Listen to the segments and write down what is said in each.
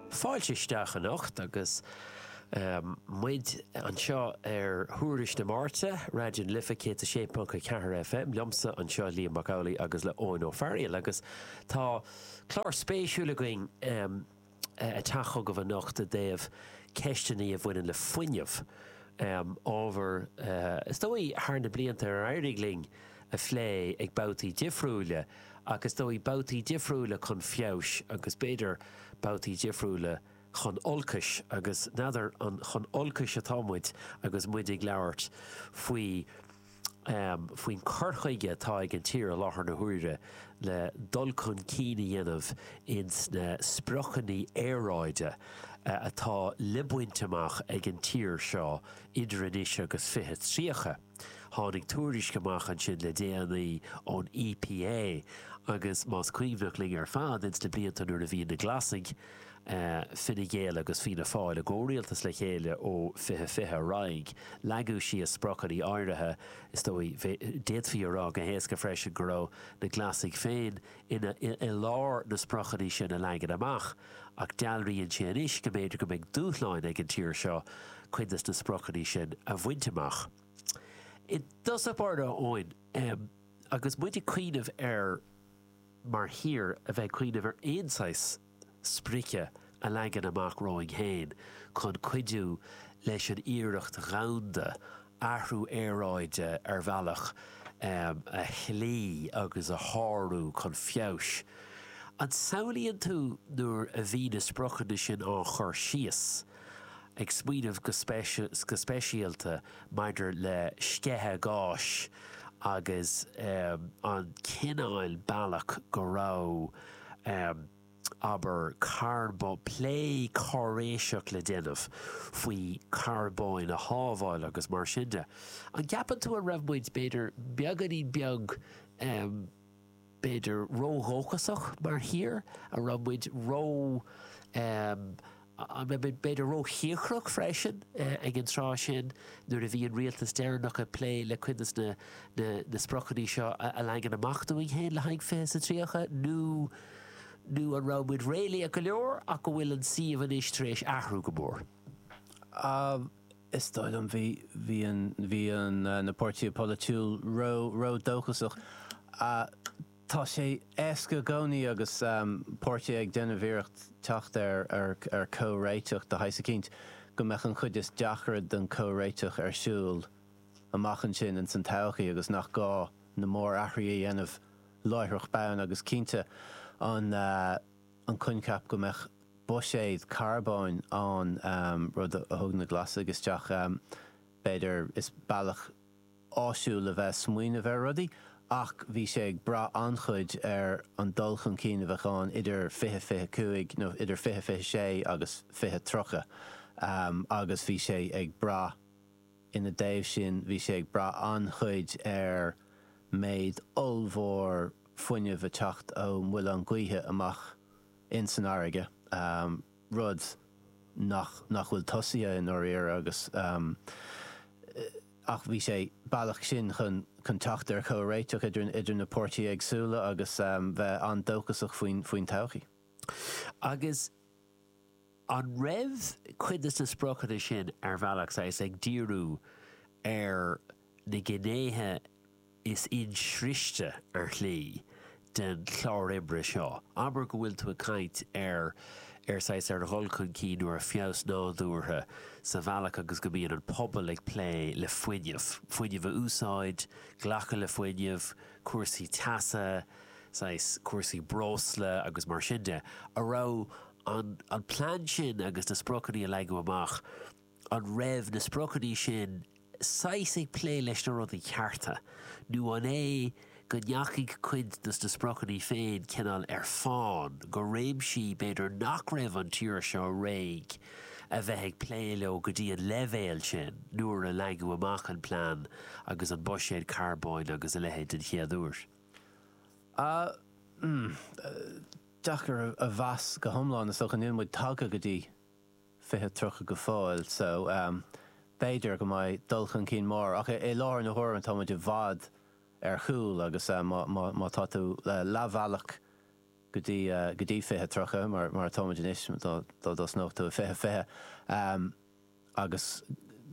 Fáilte isteach anocht agus muid anseo ar Thuairisc na Máirte, Raidió na Life 106.4 FM, liomsa anseo Liam Mac Amhlaigh agus le Eoin Ó Fearghail agus tá clár spéisiúil againn ag teacht chugaibh anocht i dtaobh ceisteanna a bhaineann le fuinneamh, ábhar is dóigh thar na blianta ar éirigh linn a phlé ag babhtaí difriúile ach is dóigh babhtaí difriúile chun feabhais agus b'fhéidir babhtaí difriúile chun olcais agus n'fheadar an chun olcais atá muid agus muid ag labhairt faoi faoin cur chuige atá ag an tír i láthair na huaire le dul chun cinn a dhéanamh ins na spriocanna aeráide atá le baint amach ag an tír seo idir anois agus 2030. Tháinig tuairisc amach ansin le déanaí ón EPA agus más cuimhneach linn ar fad ins na blianta nuair a bhí na Glasaigh, Fine Gael agus Fianna Fáil i gcomhrialtas le chéile ó 2020 ar aghaidh, leagadh síos spriocanna áirithe. Is dóigh, d'fhéadfaí a rá go héasca freisin go raibh na Glasaigh féin i lár na spriocanna sin a leagan amach. ach dealraíonn sé anois go mb'fhéidir go mbeidh dúshláin ag an tír seo cuid des na spriocanna sin a bhaint amach. I dtosach báire Eoin em agus muid ag cuimhneamh ar mar thír a bheith ag cuimhneamh ar aon saghas sprice a leagan amach romhainn fhéin chun cuidiú leis an iarracht dhomhanda athrú aeráide ar bhealach a chloí agus a shárú chun feabhais. An samhlaíonn tú nuair a bhí na spriocanna sin á chur síos, ag smaoineamh go speisialta maidir le sceitheadh gáis agus an cineál bealach go raibh, Abair carbón, plé cáiréiseach le déanamh faoi charbón a shábháil agus mar sin de. An gceapann tú an raibh muid, b'fhéidir, beagáinín beag, em, b'fhéidir ródhóchasach mar thír? An raibh muid ró, em, B'fhéidir róchíocrach freisin ag an tráth sin nuair a bhí an rialtas deireanach ag plé le cuid des na spriocanna seo a leagan amach dúinn féin le haghaidh Fiche sa Tríocha, nó nó an raibh muid réalaíoch go leor ach go bhfuil an suíomh anois tar éis athrú go mór. Is dóigh liom bhí bhí an bhí an na páirtithe polaitiúil ró ró dóchasach. Tá sé éasca i gcónaí agus páirtithe ag déanamh iarracht teacht ar comhréiteach de shaghas eicínt, go mbeadh an chuid is deacra den chomhréiteach ar siúl amach ansin ins an todhchaí agus nach gá na mórathruithe a dhéanamh láithreach bonn agus cinnte an coincheap go mbeadh buiséad carbóin ann, rud a thug na Glasaigh isteach b'fhéidir, is bealach. áisiúil a bheith ag smaoineamh ar rudaí ach bhí sé ag brath an-chuid ar an dul chun cinn a bheadh ann idir 2025 nó idir 2026 agus 2030 agus bhí sé ag brath ina dtaobh sin, bhí sé ag brath an-chuid ar méid ollmhór fuinneamh a teacht ó mhuilinn ghaoithe amach in san fharraige. rud nach nach bhfuil tosaithe i ndáiríre agus ach bhí sé bealach sin chun chun teacht ar chomhréiteach idir idir na páirtithe éagsúla agus bheith an-dóchasach faoin faoin todhchaí. Agus an raibh cuid de na spriocanna sin ar bhealach saghas ag díriú ar na gnéithe, is insroichte ar shlí den chlár oibre seo. Abair go bhfuil tú ag caint ar, ar saghas, ar dhul chun cinn nó ar feabhas nádúrtha sa bhealach agus go mbíonn an pobal ag plé le fuinneamh, fuinneamh a úsáid, glacadh le fuinneamh, cúrsaí teasa, saghas, cúrsaí breosla agus mar sin de, a raibh an, an plean sin agus na spriocanna a leagadh amach, An raibh na spriocanna sin saghas ag plé leis na rudaí cearta, nó an é go ndeachaigh cuid dos na spriocanna féin cineál ar fán go réimsí b'fhéidir nach raibh an tír seo réidh a bheith ag plé leo go dtí an leibhéal sin nuair a leagadh amach an plean agus an buiséad carbóin agus a leithéid den chéad uair? Ahm, deacair a mheas go hiomlán is dócha. Níl muid tagtha go dtí 2030 go fóill so b'fhéidir go mbeidh dul chun cinn mór ach i láthair na huaire tá muid i bhfad ar chúl agus má tá tú leathbhealach go dtí go dtí 2030 mar atá muid anois dá dtosnódh tú i 2020 agus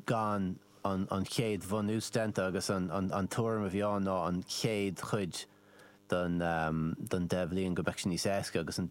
gan an chéad bhunús déanta agus an tuairim a bhí ann ná an chéad chuid den deich bhliain go mbeadh sé níos éasca agus an